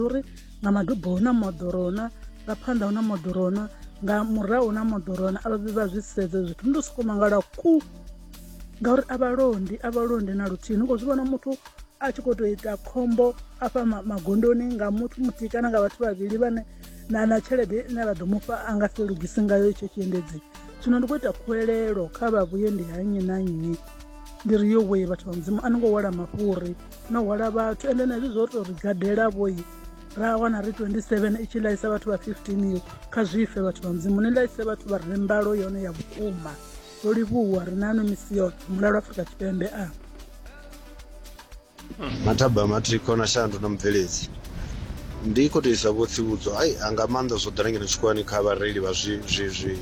uri nga madubo hu na moḓoro hu na nga phanḓa hu na moḓoro hu na nga murahu hu na moḓoro hu na a vha vhi vha zwi sedza zwithu ndi to sokou mangala ku ngauri a vha londi a vha londi na luthihi ni khou zwi vhona muthu a tshi khou tou ita khombo afha magondoni nga muthu muthihi kana nga vhathu vhavhili vhane na na tshelede ine vha ḓo mufha a nga si lugisi ngayo itsho tshiendedzi zwino ndi khou ita khuwelelo kha vha vhuye ndi ha nnyi na nnyi ndi ri yo wee vhathu vha mudzimu a ni ngo wela mafhuri no hwala vhathu ende na hezwi zwo to ri gadela vhoyi ra wana ri 27 i tshi laisa vhathu vha 15 yo kha zwife vhathu vha mudzimu ni laise vhathu vha re mbalo yone ya vhukuma ro livhuwa ri nanu misi yoṱhe mulalo afrika tshipembe a mathaba matriko na shandu na mubveledzi ndi khou tou isa vho tsivhudzo ai anga maanḓa zwo ḓala ngeno tshikolani kha vhareili vha zwi zwi zwi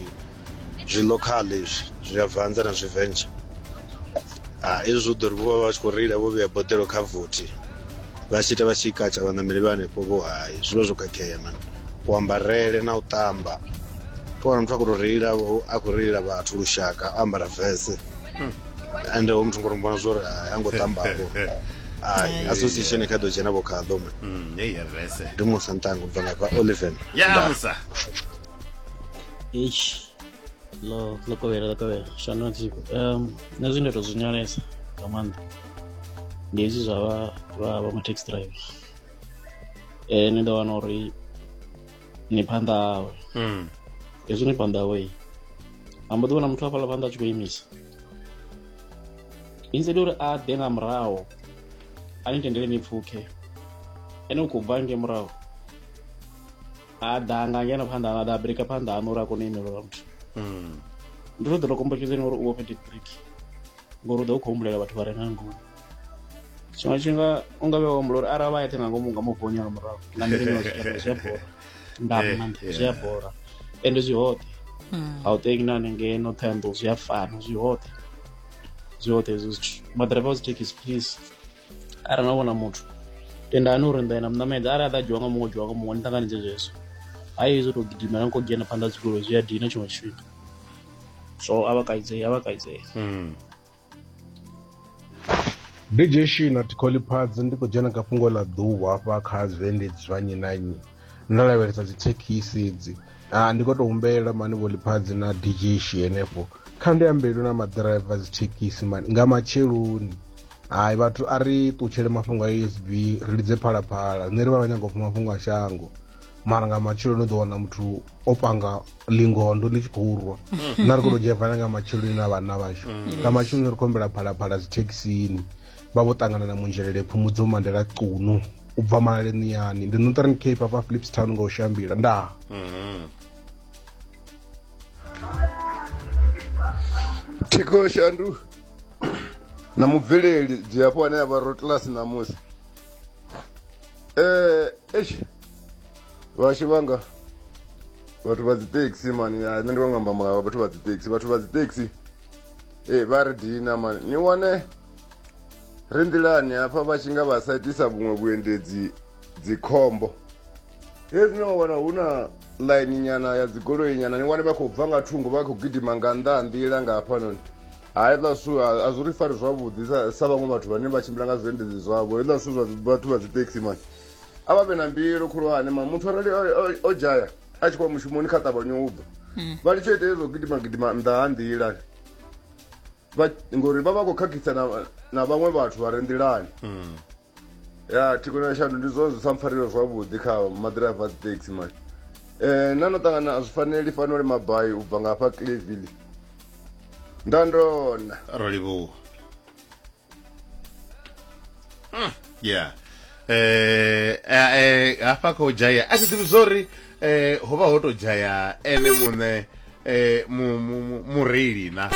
zwi local izwi zwi a vanza na zwi venture ah izwi zwo ḓo ri vho vha vha tshi khou reila vho vhea boḓelo kha vothi vha tshi ita vha tshi katsha vhaṋameli vha hanefho vho hai zwi vha zwo khakhea mani kuambarele na u ṱamba to wana muthu a khou tou reila vho- a khou reila vhathu lushaka o ambara vese ende ho muthu ngo ri mbona zwori hai a ngo ṱambavho ai association i kha ḓo dzhena vho khaḓo mani Mm, hey, ya vese. ndi musa ntango u bva ngafha oliven ya musa eish ḽo ḽo kovhela ḽo kovhela shano tsiko um nṋe zwine nda tou zwi nyalesa nga maanḓa ndi hezwi zwa vha vha vha ma-taxi driver um ni ḓo wana uri ni phanḓa hawe hmm. hezwi ni phanḓa hawe a mbo ḓi vhona muthu hafhaḽa phanḓa a tshi khou imisa instead uri a ḓe nga muraho a ni tendele ni pfukhe ene u khou bva nge muraho a ḓa nga ngeno phanḓa a ḓa brika phanḓa ano uri a kone u imelelwa muthu hmm. ndi ro ḓo to kombetshedzeni uri u vhofhe dibrik ngori u ḓo u khou humbulela vhathu vha re nga ngomu tshiṅwe tshifhinga u nga vhe wa humbula uri arali vha eṱhe nga ngomu nga mufoni nga murahu nga ndinga zwi a bora nda eh, maanḓa zwi a bora ende zwi hoṱhe hmm. a u teki na hanengei no ṱhoyandou zwi a fana zwi hoṱhe zwi hoṱhe hezwo zwithu maḓiraiva a zwi thekhisi please arali na vhona muthu tendani uri nḓa na muṋamedza arali a ḓa dzhiwa nga muṅwe dzhiwa nga muṅwe ni ṱanganedze zwezwo hayi hezwo tou gidimela ni khou dzhena phanḓa dzigoloi zwi a dina tshiṅwe tshifhinga so a vha kaidzei a vha kaidzei hmm. dj shina tikholiphads ndi khou dzhena kha fhungo ḽa ḓuvha hafha kha zwiendedzi zwa nnyi na nnyi ndo lavhelesa dzithekhisi edzi ah, ndi khou tou humbelela mani vholiphadzi na dj shi henefho kha ndi ambelwe na maḓiraiva dzithekhisi mani nga matsheloni hai vhathu a ri ṱutshele mafhungo a usb ri lidze phalaphala nṋe ri vha vha nyaga u pfa mafhungo a shango mara nga matsheloni u ḓo wana muthu o panga lingondo ḽi tshi khou rwa na ri khou tou dzhevana nga matsheloni na vhanna vhashu mm. nga matsheloni ri khou humbela phalaphala dzithekhisini vha vho ṱangana na munzhelele phumudzo mandela cunu u bva malaleniyani ndi northern cape afha philips town nga u shambila ndaa mm. thikoshandu na mubveleli dzilafho ane avha rotlas ṋamusi um eish vhashu vhanga vhathu vha dzitaxi mani ya nṋe ndi vhanga amba ma- vhathu vha dzitaxi vhathu vha dzitaxi e vha ri dina mani ni wane ri nḓilani hafha vha tshi nga vha sa itisa vhuṅwe vhuendedzi dzikhombo hezwi no wana hu na ḽaini nyana ya dzigoloi nyana ni wane vha khou bva nga thungo vha khou gidima nga nnḓa ha nḓila nga hafhanoni haiḽa zwithu a zwi ri fari zwavhuḓi sa vhaṅwe vhathu vhane vha tshimbila nga zwiendedzi zwavho hezwiḽa zwithu zwa vhathu vha dzithekisi mani a vha vhe na mbilu khulwane ma muthu arali o dzhaya a tshi khou mushumoni kha ṱavhanye u bva hmm. vha litsho ita hezwo gidima gidima nnḓa ha nḓila vha ngori vha vha khou khakhisa na, na vhaṅwe vhathu vha re nḓilani mm. ya thikona ya shandu ndi zwone zwi sa mpfarelo zwavhuḓi kha maḓiraiva dzi taxi mani um eh, na no ṱangana a zwi faneli fanole mabai u bva nga hafha cleville nda ndona ro livhuwa hmm. yeah eh, eh, eh hafha kha u dzhaya a thi ḓivhi zwo ri eh ho vha ho tou dzhaya ene muṋe eh mureili na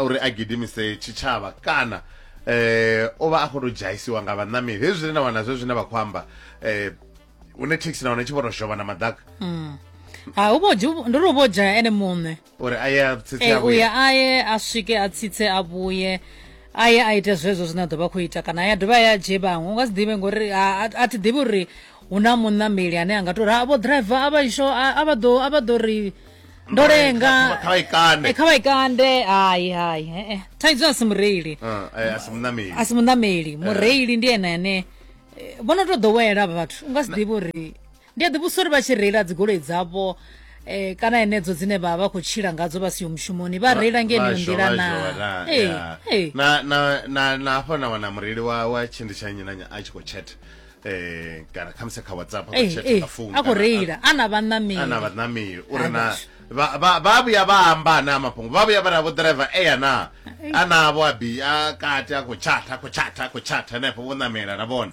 uri a gidimise tshitshavha kana eh o vha a khou tou dzhaisiwa nga vhaṋameli hezwi zwine na wana zwe zwine vha khou amba eh hune thekhisi na wana tshi vho tou shova na maḓaka mm. ha u vho ndi ri u vho dzhaya ene muṋe uri aye a tsitse eh, a vhuye uya aye a swike a tsitse a vhuye aye a ite zwezwo zwine a ḓo vha khou ita kana ya dovha ya dzhie vhaṅwe u nga si ḓivhe ngori a thi ḓivhi uri hu na muṋameli ane a nga tou ri vho driver a vha isho a vha ḓo a vha ḓo ri ndo lenga kha vha ikande eh, kha vha ikande hayi hayi eh, eh. thaidzo a si mureili ah, a si muṋameli a si muṋameli mureili ndi ene ane vhono tou ḓowela vhathu u nga si ḓivhi uri Ndi a ḓivhudzisa uri vha tshi reila dzigoloi dzavho eh, kana henedzo dzine vha vha khou tshila ngadzo vha siho mushumoni vha reila nga yeneyo Vhasho, nḓila vhasho, na naa Ee, ya. ee. na na na na hafha na wana mureili wa wa tshindi tsha nnyi na nnyi a tshi khou chat eh kana khamusi kha whatsapp a khou Ee, chat ee. nga phone a khou kana- reila a na a na vhanameli vhanameli uri Hai, na vhashu. vha- vha vha vhuya vha amba ana mafhungo vha vhuya vha na vho driver eya na anavho abi a kati a khou chat a khou chat a khou chat henefho vho namela na vhone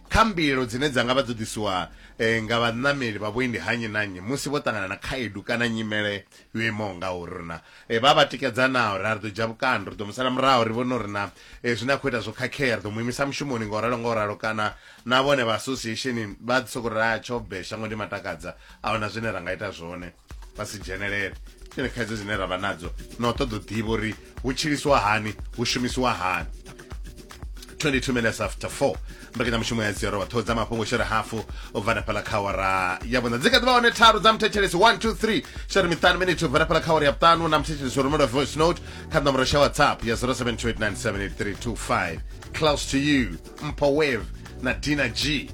Kha mbilaelo dzine dza nga vha dzo ḓisiwa nga vhaṋameli vha vhuendi ha nnyi na nnyi musi vho ṱangana na khaedu kana nyimele yo imaho ngauri, ri na vha vha tikedza naa uri a ri ḓo dzhia vhukando, ri ḓo mu sala murahu, ri vhone uri naa zwine a khou ita zwo khakhea, ri ḓo mu imisa mushumoni nga u ralo nga u ralo kana naa vhone vha association vha ḓi sokou ri, Hai, tsho bve, shango ndi matakadza, a hu na zwine ra nga ita zwone. vha si dzhenelele tshine khaidzo dzine ra vha nadzo na u ṱoḓa u ḓivha uri hu tshiliswa hani hu shumisiwa hani 22 minutes after 4 mbekanyamushumo ya zero vhathu dza mafhungo shere hafu u bva na fhala kha wara ya vhuṋa dzi kha ḓivha hone tharu dza muthetshelesi 123 shere miṱanu minute u bva na fhala kha wara ya vhuṱanu na muthetshelesi wa rumela voice note kha ṋomboro sha whatsapp ya 0728978325 close to you mpo wave na dina g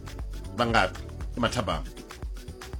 vha ngafhi i mathabama